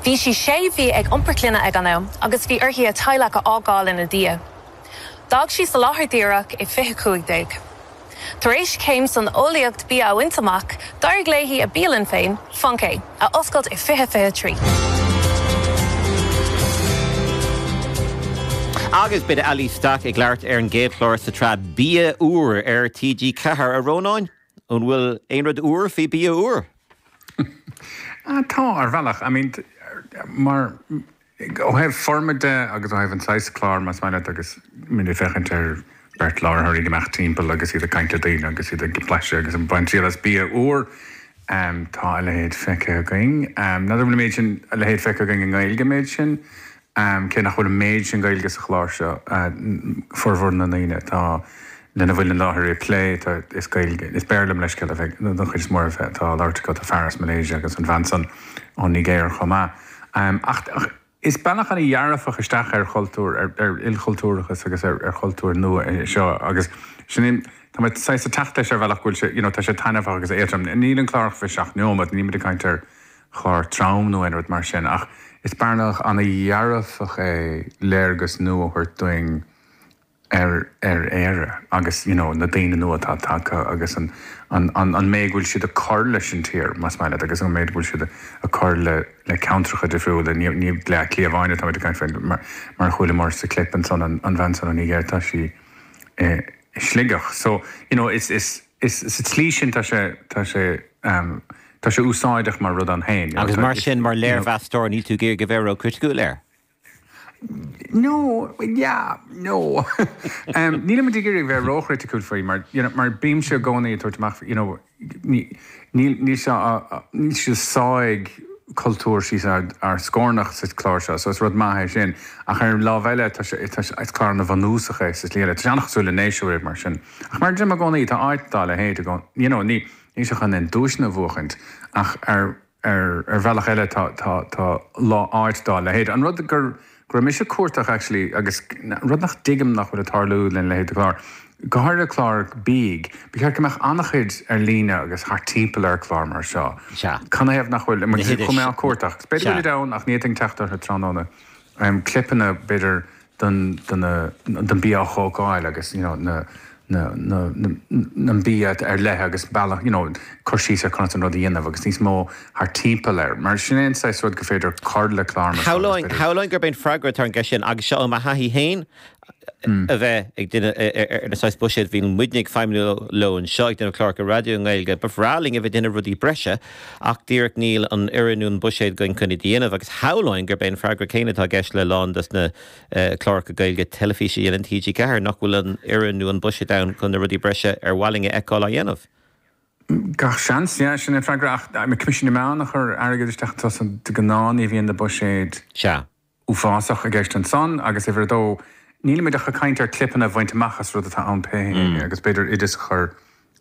Bhí sí sé mhí ag iompar clainne ag an am agus bhí uirthi a teaghlach a fhágáil ina diaidh. D'fhág sí an láthair dhíreach i 20 15. Tar éis céim san eolaíocht bia a bhaint amach, d'éirigh léi a bialann féin, Funke, a oscailt i 20 23. Agus beidh Aileesh Stack ag labhairt ar an gcéad chlár sa tsraith Bia Úr ar TG4, a Rónáin. An bhfuil aon rud úr faoi bia úr? Tá, ar bhealach. I mean, mar, ó thaobh foirme de agus ó thaobh an saghas chláir, más maith leat, agus má tá tú ag féachaint ar beirt láithreoir ag imeacht timpeall agus iad ag caint le daoine agus iad ag blaiseadh agus ag baint triail as bia úr, tá a leithéid feicthe againn. N'fheadar an bhfuil an méid sin, a leithéid feicthe againn i nGaeilge an méid sin? Am, cé nach bhfuil an méid sin Gaeilge sa chlár seo, formhor na ndaoine atá lena bhfuil an láithreoir ag plé, tá, is Gaeilge, is Béarla mo leithscéal, don chuid is mó atá á labhairt acu, tá fear as Malaysia agus an bhean san ón Nigéir chomh maith. Am, ach is bealach ana dhearfach isteach ar chultúr, ar, ar ilchultúrachas agus ar, ar chultúr nua é seo agus sin é, tá mé saghas ag teacht leis ar bhealach go bhfuil sé, you know, tá sé taitneamhach agus éadrom. Níl an clár ach fiche seacht neomat, nílimid ag caint ar, chláir trom nó aon rud mar sin ach is bealach ana dhearfach é léargas nua a thabhairt duinn ar ar Éire agus you know na daoine nua atá tagtha agus an an an an méid go bhfuil siad ag cur leis an tír más maith leat agus an méid go bhfuil siad ag cur le le ceantracha difriúla ní ní Bleá Cliath amháin atá muid ag caint faoi mar mar a chualamar sa clip ansan an an bhean san ón Nigéir tá sí i i Sligeach so you know is is Is sa tslí sin tá sé, tá sé, tá sé úsáideach mar rud ann féin. Agus mar sin, mar léirmheastóir, níl tú ag iarraidh a bheith ró chriticiúil air? No, yeah, no. Nílimid ag iarraidh a bheith ró chriticiúil faoi mar, you know, mar bímse i gcónaí ag tabhairt amach, you know, níl, níl sé, níl sé ag sá cultúr síos ár scórnach sa chlár seo, so is rud maith é sin. Ach ar an lámh eile, tá sé, tá sé, is clár ana bhunúsach é sa slí eile. Tá sé an-chosúil le Nationwide mar sin. Ach mar a deirim i gcónaí, tá áit dá leithéid i gcónaí, you know, níl, níl sé chun aon duaiseanna a bhuachaint, ach ar, ar, ar bhealach eile tá, tá, tá lá, áit dá leithéid. An rud gur, go raibh mise ag cuardach actually, agus an rud nach dtuigim nach bhfuil ag tarlú lena leithéid de chlár, go háirithe cláir bídh, ba cheart go mbeadh an-chuid ar líne agus thart timpeall ar chlár mar seo. Sea. Cad na thaobh nach bhfuil, chuaigh mé ag cuardach. Is b'fhéidir go bhfuilid ann, ach ní fhéadfainn teacht orthu tráthnóna. Clipeanna, b'fhéidir, don don don bia thógáil agus you know na na na na na bia ar leith agus bealach you know cur síos ar conas an rud a dhéanamh agus níos mó thart timpeall air mar sin é an saghas rud go féidir cur le clár mar seo agus féidir Shamhlóinn gurb é an freagra atá ar an gceist sin agus seo óm thaithí féin a bheith ag déanamh ar na saghas buiséid a bhíonn muidne ag feidhmiú leo anseo ag déanamh cláracha raidió i nGaeilge ba bhreá linn a bheith ag déanamh rudaí breise Ach díreach níl an fhoireann nó an buiséad againn chun iad a dhéanamh agus shamhlóinn gurb é an freagra céanna atá i gceist le a lán dos na cláracha Gaeilge teilifíse a dhéanann TG4, nach bhfuil an fhoireann nó an buiséad ann chun na rudaí breise ar mhaith linn a fheiceáil á dhéanamh. Gach seans, yeah, sin an freagra ach Coimisiún na Meán a chuir airgead isteach, de gnáth ní bhíonn na buiséid. Sea. uafásach i gceist ansin agus uimhir a dó nílimid ach ag caint ar clipeanna a bhaint amach as rud atá ann pé scéal agus b'fhéidir oideas a chur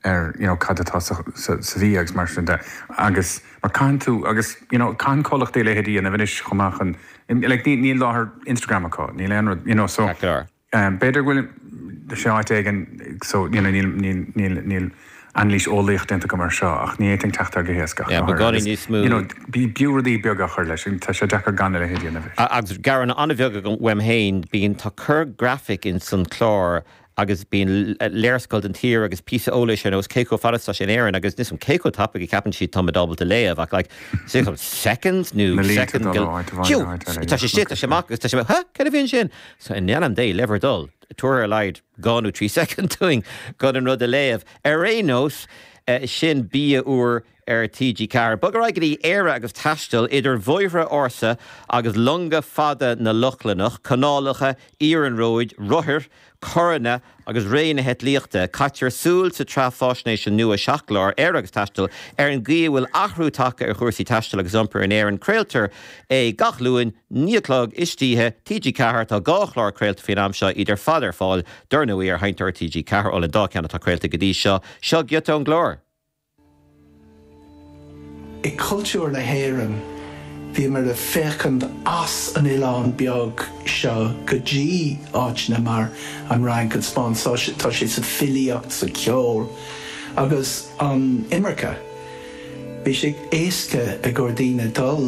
air you know cad atá sa sa bhia agus mar sin de agus mar caithfidh tú agus you know caitheann comhlachtaí a leithéid a dhéanamh anois chomh maith chun like mura bhfuil láithreacht Instagram acu níl aon rud you know so Tá clár. B'fhéidir go bhfuil sé áit éigin so you know níl níl níl níl anailís eolaíoch déanta agam air seo ach ní fhéadfainn teacht air go héasca ach Yeah, ba gá linn níos mó. you know bí b'fhiú rudaí beaga a chur leis an tá sé deacair gan a leithéid a dhéanamh. Agus gearán an-bheag agam uaim féin, bíonn tá corr graphic in san clár agus bíonn léarscáil den tír agus píosa eolais ar nós cé chomh fada is atá siad in Éirinn agus níl a fhios agam cé chomh tapaidh a cheapann siad táimid ábalta léamh ach like dhá second nó seconds go you tá sé siad tá sé amach agus tá sé huh cad a bhí ansin Sea, in ainm Dé, le bhur dtoil, tabhair ar a laghad dhá nó trí soicind dúinn chun an rud a léamh. Ar aon nós, sin Bia Úr ar TG4. Bogaimis ar aghaidh go dtí Éire agus taisteal idir bhóithre ársa agus longa fada na Lochlannach, canálacha, iarnróid, rothair, carranna Agus ré na heitlíochta caitear súil sa tsraith fáisnéise nua seacht gclár, Éire agus Taisteal, ar an gcaoi a bhfuil athrú tagtha ar chúrsaí taistil agus iompair in Éirinn, craoltar é gach Luan, naoi a chlog istoíche, TG4. Tá dhá chlár craolta faoin am seo, iad ar fad ar fáil, dar ndóigh, ar Sheinnteoir TG4 ón dá cheann atá craolta go dtí seo, seo giota ón gclár. I gcultúr na hÉireann, bhíomar ag féachaint as an oileán beag seo go dtí áiteanna mar an Fhrainc, an Spáinn, tá sé sa filíocht, sa cheol agus an imirce. Bhí sé éasca ag ár ndaoine dul